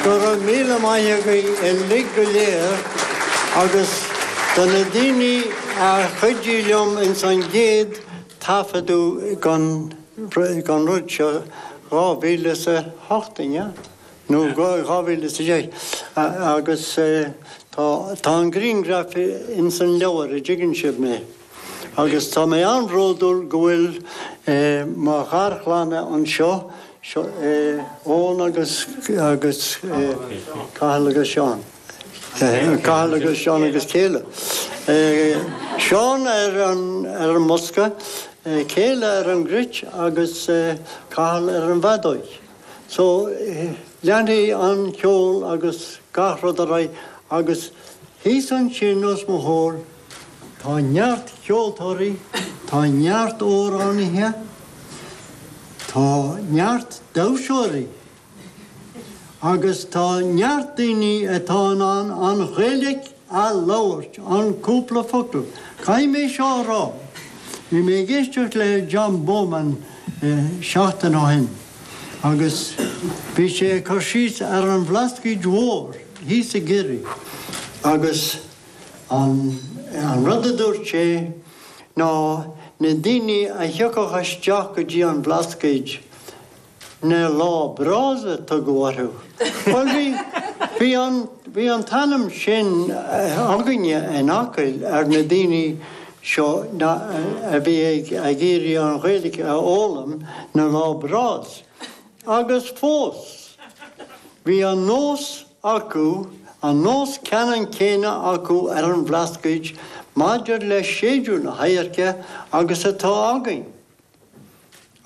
Go raibh míle maith againn uilig go léir agus do na daoine a chuidigh liom ins an gcéad taifeadadh den rud seo, 2008, an ea? nó i 2010, agus tá an grianghraf ins an leabhar a dtuigeann sibh mé. Agus tá mé an-bhródúil go bhfuil mo gharchlann anseo, Eoin agus Cathal agus Seán, Cathal agus Seán agus Céile, Seán ar an mbosca, Céile ar an gcruit agus Cathal ar an bhfeadóig. So, leanfaidh an ceol agus gach rud ar aghaidh agus thíos ansin os mo chomhair, tá neart ceoltóirí, tá neart amhránaithe, tá neart damhsóirí agus tá neart daoine atá in ann an Ghaeilge a' labhairt, an cúpla focal, caithfidh mé seo a rá, bhí mé ag éisteacht le John Bowman seachtain ó shin agus bhí sé ag cur síos ar an Bhlascaoid Mhór thíos i gCiarraí agus an rud a dúirt sé ná na daoine a thiocfadh isteach go dtí an Bhlascaoid na Lá Breás a tugadh orthu. Bhuel, bhí, bhí an, bhí an t-ainm sin againne in Acaill ar na daoine seo na, a bhí ag, ag iarraidh an Ghaeilge a fhoghlaim, na Lá Breás. Agus fós, bhí an nós acu, an nós ceannann céanna acu ar an Bhlascaoid maidir le séideadh na hadhairce agus atá againn.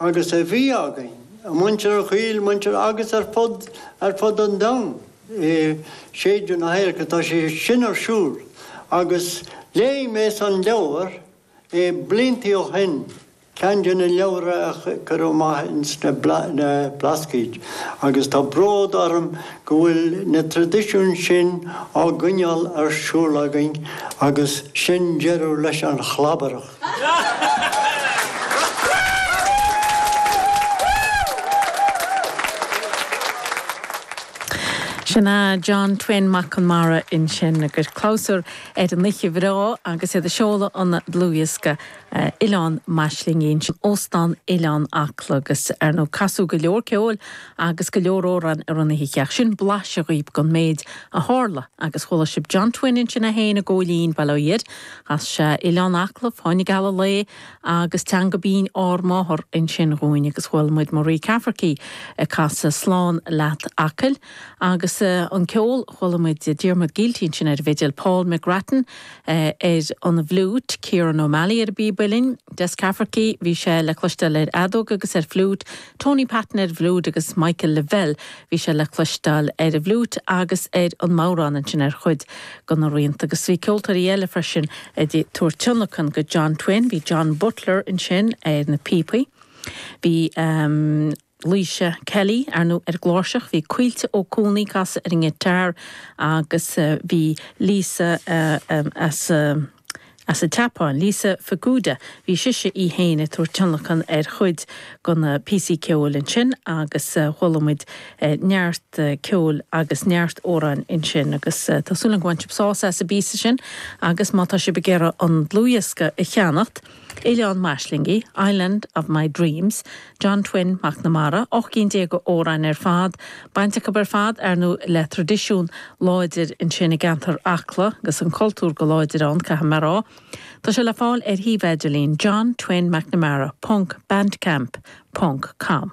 agus a bhí againn, ag muintir Acaill, muintir agus ar fud, ar fud an domhain i séideadh na hadhairce. Tá sé sin ar siúl agus léigh mé san leabhar é blianta ó shin, ceann de na leabhra a cuireadh amach in sna Blascaoid agus tá bród orm go bhfuil na tradisiúin sin á gcoinneáil ar siúl againn agus sin deireadh leis an chlabaireacht. Sin é John Twin Mac Conmara ansin ag cur clabhsúr ar an oíche bhreá agus iad ag seoladh an dlúthdhiosca Oileán m'Aislingí in Óstán Oileán Acla agus, ar ndóigh, casadh go leor ceoil agus go leor amhrán ar an oíche. Ach sin blaiseadh dhaoibh den méid a tharla agus chuala sibh John Twin ansin é féin ag gabháil an Baile Átha Fhirdh, Ó sea, Oileán Acla, fáinne geal an lae agus teanga bhinn ár máthar ansin dhúinn agus chuala muid Marie Cafferky ag casadh Slán Leat Acaill agus an ceol, chuala muid Diarmuid Gielty ansin ar an bhfidil, Paul McGrattan ar an bhfliúit, Kieran O'Malley ar an bpíb uillinn, Des Cafferky, bhí sé le cloisteáil ar fheadóg agus ar fliúit, Tony Patten ar an bhfliúit agus Michael Lavelle, bhí sé le cloisteáil ar an bhfliúit agus ar an mbodhrán ansin ar chuid de na rianta. Agus bhí ceoltóirí eile freisin ag tabhairt tionlacain go John Twin, bhí John Butler ansin ar na píopaí, bhí Laoise Kelly ar an gcláirseach, bhí Caoilte Ó Cuanaigh ag casadh ar an ngiotár agus bhí Lisa as an. As an tSeapáin, Lisa Fukuda, bhí sise í féin ag tabhairt tionlacain ar chuid de na píosaí ceoil ansin agus chuala muid neart ceoil agus neart amhráin ansin agus tá súil agam gur bhain sibh sás as an bpíosa sin agus má tá sibh ag iarraidh an dlúthdhiosca a cheannacht, Oileán m'Aislingí, Island of my Dreams, John Twin McNamara, ocht gcinn déag d'amhráin ar fad, baint acu ar fad, ar ndóigh, le traidisiún láidir ansin i gceantar Acla agus an cultúr go láidir ann, caithfidh mé a rá. Tá sé le fáil ar shuíomh idirlín John Twin McNamara ponc Bandcamp ponc com.